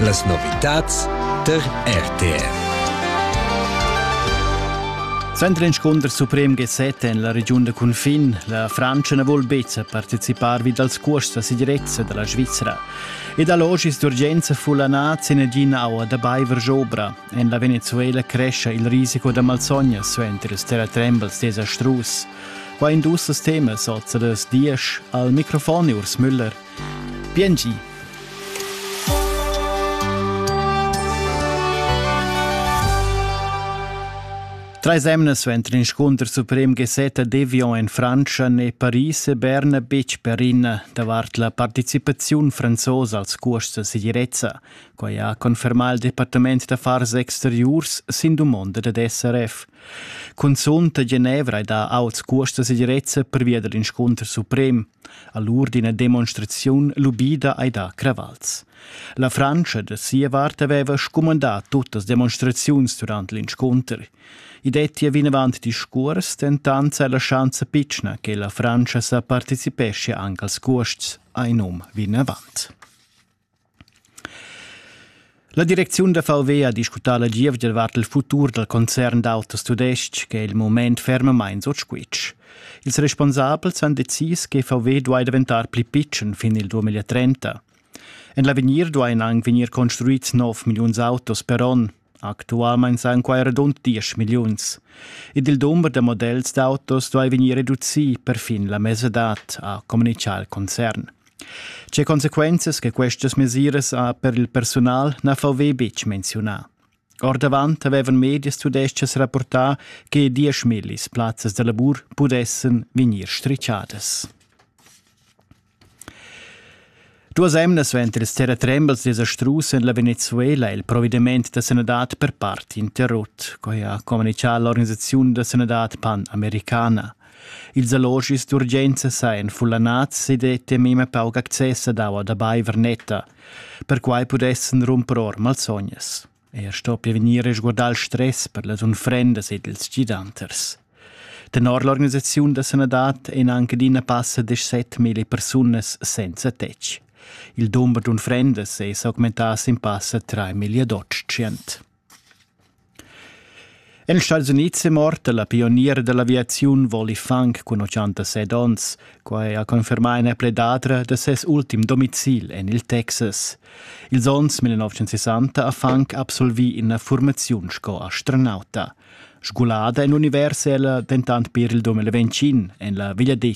Las novitads der RTR. Sendrinscunder suprem gesset en la regiun da cunfin. La Frantscha na vul betg participar vid als cuosts da segirezza da la Svizra. Ed allogis d'urgenza fulanà zinegina aua da baiver jobra. En la Venezuela crescia il risico da malsogna suenter ils terratrembels desastrus. Qua industrias temas oz da dies al microfon Urs Müller. Bien gi! Treis emna suenter inscunter suprem gasetta Devion en Frantscha n'è Paris e Berna betg perina davart la participaziun franzosa als cuosts da segirezza. Quai ha confermà il Departament d'affars exteriurs sin dumonda dad SRF. Cunzunt a Genevra è dà auts cuosts da segirezza pervia dal inscunter suprem. a l'ur d'ina demonstraziun lubida ei da cravals. La Frantscha da sia vart haveva scumandà tuttas demonstraziuns durant l'inscunter. I dettia vinavant discurs, dentant sei la schanza pitschna che la Frantscha sa partecipescha anche als cuosts, ha in um vinavant. La direcziun da Falvé ha discutà la gievgia davart il futur dal concern d'autos tudestg che è il mument fermamain sut squitsch. Ils responsabels han decis che VW duai daventar pli pitschen fin il 2030. En l'avegnir duain anc vegnir construids nov milliuns autos per onn. Actualmein san quai radund diesch milliuns. Ed il dumber da models d'autos duai vegnir reducì perfin la mesadad, ha communitgà il concern. Tge consequenzas che questas mesiras ha per il personal na VW betg menziunà. Ordavant avevan medias tudestgas rapportà che diesch millis plazzas da lavur pudessan vegnir strichadas. Duas emnas venter ils terratrembels desastrus en la Venezuela è il provediment da sanadad per part interrut, quai ha communitgà l'organisaziun da sanadad pan-americana. Ils allogis d'urgenza sajan fullanads ed è temima pauc access ad aua da baiver netta. Perquai pudessan rumper or malsognas. Ei sto pia vegnir risguardà il stress per las unfrendas ed ils gidanters. Tenor l'organisaziun da sanadad ein anche adina passa deschsettmila persunas senza tetg. Il dumber d'unfrendas ei s'augmentaus in passa 3 million En Stats Unids è morta la pioniera dell'aviaziun Wally Funk cun 86 onns. Quai ha confermà ina predadra da ses ultim domicil en il Texas. Ils onns 1960 ha Funk absolvì ina formaziun sco astronauta. Sgulada en univers è ella dentant per il 2020 en la vegliadetgna